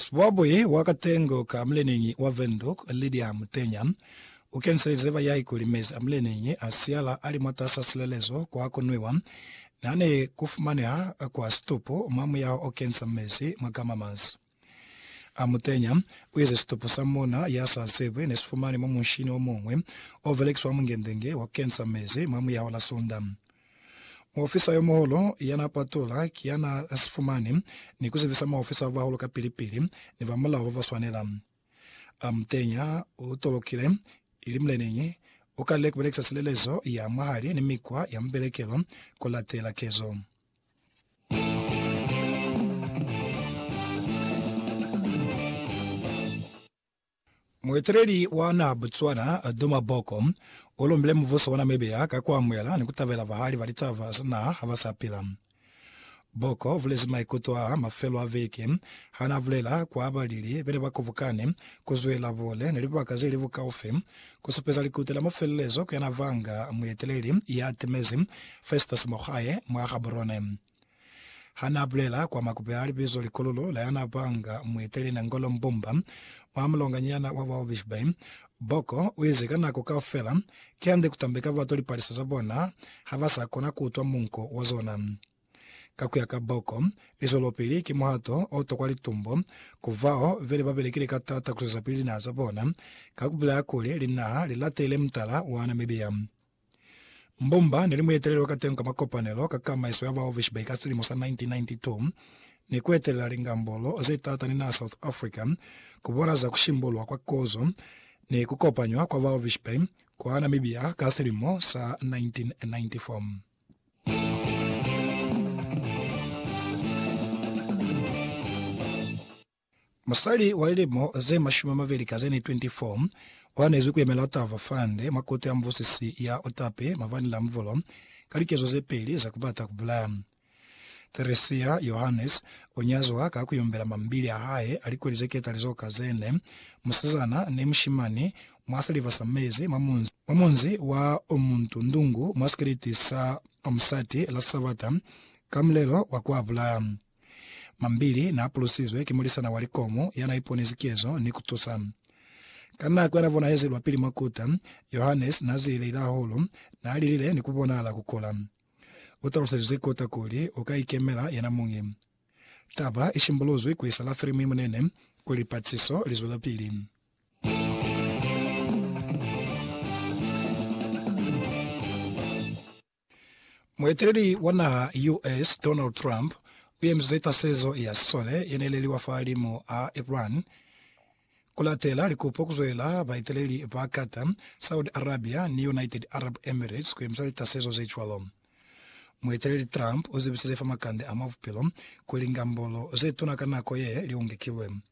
Sibwabwi wa katengo ka muleneñi wa Windhoek, Lydia Mutenya, u kenselize bayai kuli mezi a muleneñi a siala a li mwatas'a silelezo kwa ku nwiwa n'a ni ku fumaneha kwa situpu mwa muyaho o kensa mezi mwa gamamas. A Mutenya u ize situpu sa mona ya sa sebwi ne si fumani mwa munshini o muñwi o belekiswa mwa Mungentenge wa ku kensa mezi mwa muyaho la Sunda. Muofisa yo muhulu ya n'a patula ki ya n'a si fumani ni ku zibisa maofisa ba bahulu kapili-pili ni ba mulao ba ba swanela. A mu tenya, u tolokile, ili muleneñi, u kalile ku belekisa silelezo ya mwa hali ni mikwa ya mubelekelo ku latela kezo. Mueteleli wa naha Botswana, Duma Boko, u lombile mubuso wa Namibia ka ku amuhela ni ku tabela bahali ba litaba za naha ha ba sa pila. Boko u bulezi maikuto aa mafelo a veke ha n'a bulela kwa balili be ne ba kobokane ku zwela bole ni libaka ze li bukaufi ku supeza likuta la mafelelezo ku yana vanga mueteleli ya timezi Festus Mogae mwa Gaborone. Ha n'a bulela kwa makupe a libizo Likololo la yana panga mueteli Nangolo Mbumba mwa mulonganyana wa ba Obishbay, Boko u ize ka nako kaufela ki hande ku tambeka batu lipalisa za bona ha ba sa kona ku utwa munko wa zona. Ka ku ya ka Boko, lizwelopili ki muhato o tokwa litumbo ku bao be li ba belekile ka t'ata ku zwezapili linaha za bona ka ku bulela kuli linaha li latele mutala wa Namibia. Mbumba ne li mueteleli wa kateñi ka makopanelo ka kamaiso ya baovishibai ka silimo sa 1992 ni kuetelela lingambolo ze taata ni naha South Africa ku bola za kushimbulwa kwa kozo ni kukopanywa kwa baovishibai kwa Namibia ka silimo sa 1994. Musali wa lilimo ze mashumi a mabeli ka ze ne 24 o anezwi ku yemela Tava Fund mwa Kote ya Mubusisi ya Otape mabani la Mvolo ka likezo ze peli za ku bata ku bulaya. Theresia Johannes o nyazwa ka ku yombela mambili a hae a likoli ze ketalizo ka ze ne musizana ni mushimani mwa siliva sa mezi mwa munzi mwa munzi wa Omuntu Ndungu mwa sikiliti sa Omusati la Sabata ka mulelo wa ku a bulaya. Mambili naapulusizwe ki mulisana wa likomu yanaiponezi kezo ni kutusa. Ka nako yanabonahezi lwapili mwa kuta, Johannes naazieleile hahulu, naalilile ni kubonahala kukula. Utaluselize kuta kuli ukaikemela yenamuñi. Taba ishimbuluzwi kuisa la Thirimi Munene kuli lipatisiso lizwelapili. Mueteleli wa naha US. Donald Trump uyemize tasezo ya sisole yeneleliwa fahalimu a Iran kulatela likupo kuzwela baeteleli ba Qatar, Saudi Arabia ni United Arab Emirates kuyemisa litasezo zecwalo. Mueteleli Trump uzibisize fa makande a mwa bupilo kuli ngambolo zetuna ka nako ye liungekilwe.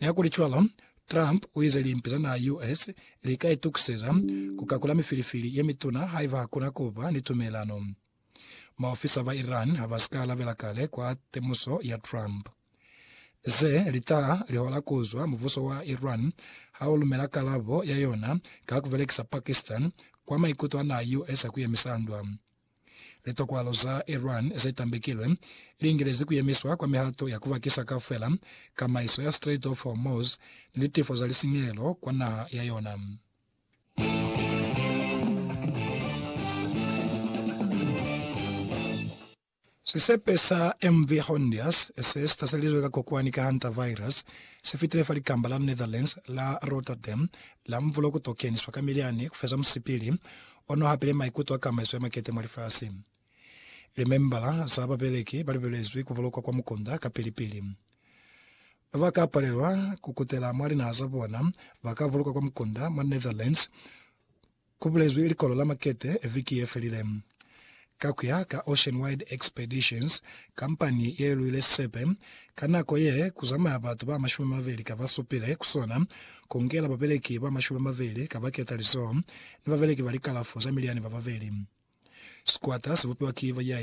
Nihakulicwalo, Trump uize limpi za naha ya US lika itukiseza kukakula mifilifili yemituna haiba hakuna kuba ni tumelano. Maofisa ba Iran habasika alabela kale kwa temuso ya Trump. Ze litaha lihola kuzwa mubuso wa Iran haulumela kalabo ya yona ka kubelekisa Pakistan kwa maikuto a naha ya US a kuyemisa ndwa. Litokwalo za Iran ze tambekilwe li ingelezi ku yemiswa kwa mihato ya ku bakisa kaufela kamaiso ya Strait of Hormuz ni litifo za lisinyehelo kwa naha ya yona. Sisepe sa MV Hondius, se si taselizwe ka kokwani ka hantavirus, si fitile fa likamba la Netherlands la Rotterdam la mvulo ku to keniswa ka milyani ku feza musipili ono hapile maikuto a kamaiso ya makete mwa lifasi. Limembala za babeleki ba libelezwi ku bulokwa kwa mukunda kapili-pili. Ba ba ka palelwa ku kutela mwa linaha za bona ba ka bulokwa kwa mukunda mwa Netherlands, ku bulezwi likolo la makete viki ye felile. Ka ku ya ka Ocean Wide Expeditions, kampani ye lwile sisepe ka nako ye ku zamaya batu ba mashumi mabeli ka ba supile ku sona, ku ngela babeleki ba mashumi mabeli ka ba keta lizoho ni babeleki ba likalafo za miliani ba babeli. Sikwata si bupiwa ki bayai.